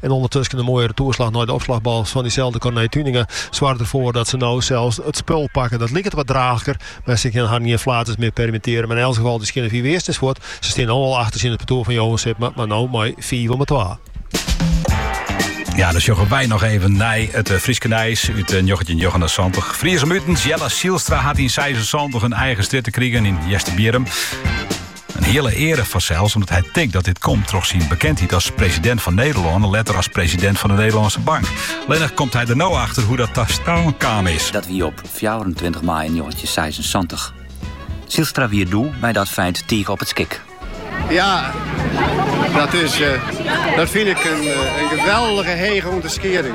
En ûndertusken in moaie retoerslach nei de opslachbal fan dyselde Corné Tuinenga soarget derfoar dat se no sels it spul pakke. Dat liket wat draachliker, mar se kinne harren gjin flaters mear permittearje. Mar yn elts gefal, dy skjinne fiif earst ris fuort. Se stean no al achter tsjin it partoer fan Johan Sipma, mar no mei fiif om 'e twa. Ja, dan sjogge wy noch even nei it eh, Fryske nijs út 1979. Eh, Fries om utens Jelle Zijlstra hat yn 76 in eigen strjitte krigen yn Easterbierrum. In hiele eare fansels omdat hy tinkt dat dit komt troch syn bekendheid as president fan Nederlân en letter as president fan de Nederlandsche Bank. Lennig komt hy der no achter hoe dat ta stân kaam is. Dat wie op 24 maaie 1976. Zijlstra wie doe mei dat feit tige op it skik. Ja, dat, is, eh, dat fyn ik in, eh, in geweldige hege ûnderskieding.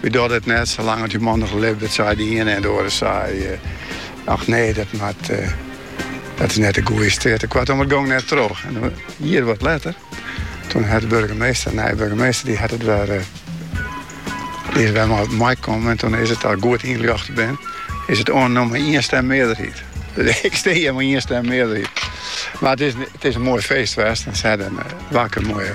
Wy dogge it net sa lang as dy man noch libbet, sei de iene en de oare sei, Och nee, dat moat, dat is net de goeie strjitte. Koartom, it gong net troch. In jier wat letter, toen hat de burgemeester, de nije burgemeester, die hat it wer, die is wer mei op mei kommen en toen is it, as ik goed ynljochte bin, is it oannommen mei ien stem mearderheid. Ik stie hjir mei ien stem mearderheid. Mar it is, it is in moai feest west en se hawwe in wakker moaie